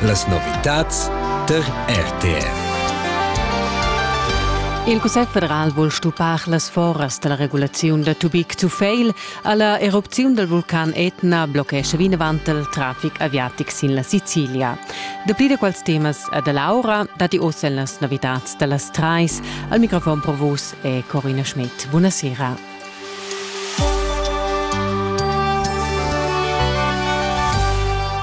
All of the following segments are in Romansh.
Las novitads tar RTR. Il Cussegl federal vul stuppar las foras da la regulaziun da tubig to fail. Alla erupziun dal vulcan Etna bloccescha vinavant il traffic aviatic sin la Sicilia. Dapli da quels temas a da Laura datti oz en las novitads da las trais. Al microfon pro vus è Corina Schmidt. Buonasera.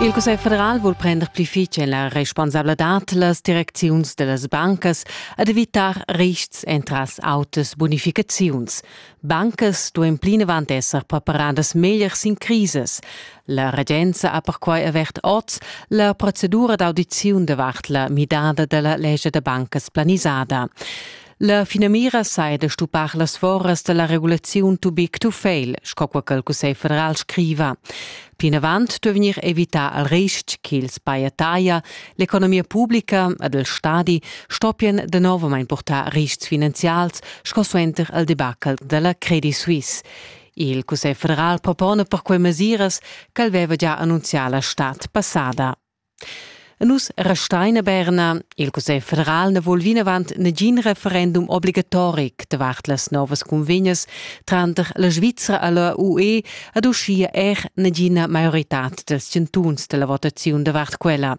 Il Cussegl federal vul prender pli fitg en la responsabladad las direcziuns da las bancas ed evitar rists entras autas bunificaziuns. Bancas duain plinavant esser preparadas meglier sin crisas. La regenza ha perquai avert oz la procedura d'audiziun davart la midada da la lescha da bancas planisada. La finamira sai da stupar las foras da la regulaziun to big to fail, sco quai che il Cussegl federal scriva. Plinavant duai vegnir evità al ristg ch'ils paiataia, l'economia publica ed il stadi stoppien de novamain portar ristgs finanzials sco suenter al debacle della Credit Suisse. Il Cussegl federal propona per quei mesiras che el veva già annunzià la stad passada. Nus restein a Berna. Il Cussegl federal na vul vinavant negin referendum obligatoric davart las novas cunvegnas tranter la Svizra e la UE ed uschia er negina maioritad dels chantuns della votaziun davart quella.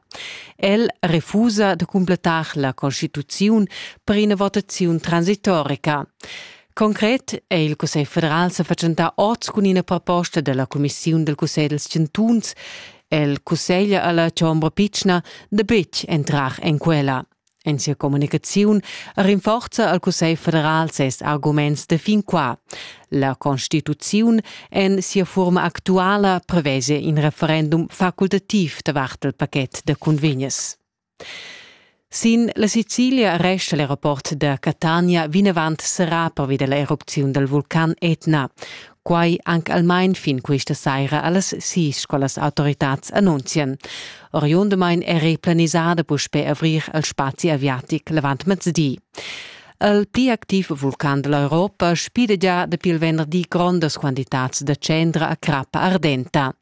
El refusa de completar la constituziun per ina votaziun transitorica. Concret è il Cussegl federal sa fatschentà oz cun ina proposta dalla cumissiun del Cussegl dels chantuns el cussegl alla chombra pitschna da betg entrar en quella. En sia communicaziun rinforza al Cussegl federal ses arguments de fin qua. La Constituziun en sia forma actuala prevese in referendum facultativ davart il paket de convegnes. Sin la Sicilia resta il rapport da Catania vinavant serrà pervi da l'erupziun dal vulcan Etna. Quai anc almain fin questa saira a las sis, quellas autoritads annunzian. Oriundamain eri planisada puspè avrir il spazi aviatic l'avant mezdi. Il pli activ vulcan da l'Europa spida già dapi il venderdi grondas quantitads da cendra a crappa ardenta.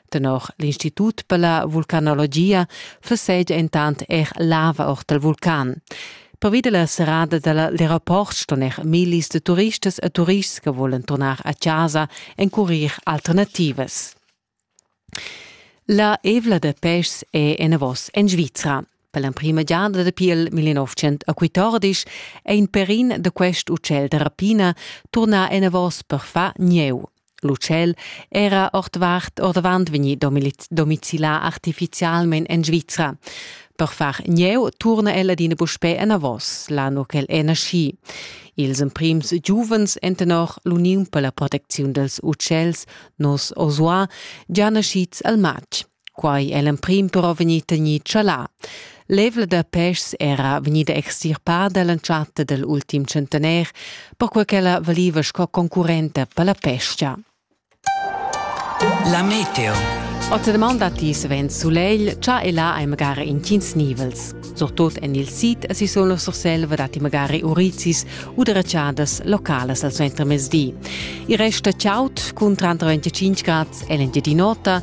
Tenor l'Institut per la vulcanologia flessegia intant er lava or dal vulcan. Pervi della serrada dell'aeroport ston er millis de turistas e turists che volen tornar a casa encurir alternativas. La evla de pes è enavos en Svizra. Per l'emprima giada dapi il 1914 è in perin da quest utschel da rapina turnà enavos per far gnieu. L'utschel era ordvart ordavant vegnì domicilà artifizialmain en Svizra. Per far gnieu turna el adina puspè enavos, l'anno ch'el è naschì. Ils emprims giuvens èn tenor l'Uniun per la protecziun dals utschels, nos Osua, già naschids al matg. Quai è l'emprim però vegnì tegnì chalà. L'evla da peschs era vegnida extirpada l'entschatta dal ultim centenair, perquai ch'ella valiva sco concurrenta per la pesca. La meteo. Oz demanda ti svent sulegl, cha e là hai magari intgins nivels. Surtut en il sid si sono la Surselva dati magari urizis u deracciadas localas al suentermezdi. Il rest è chaud, cun 35 grad è l'Engiadin'Ota,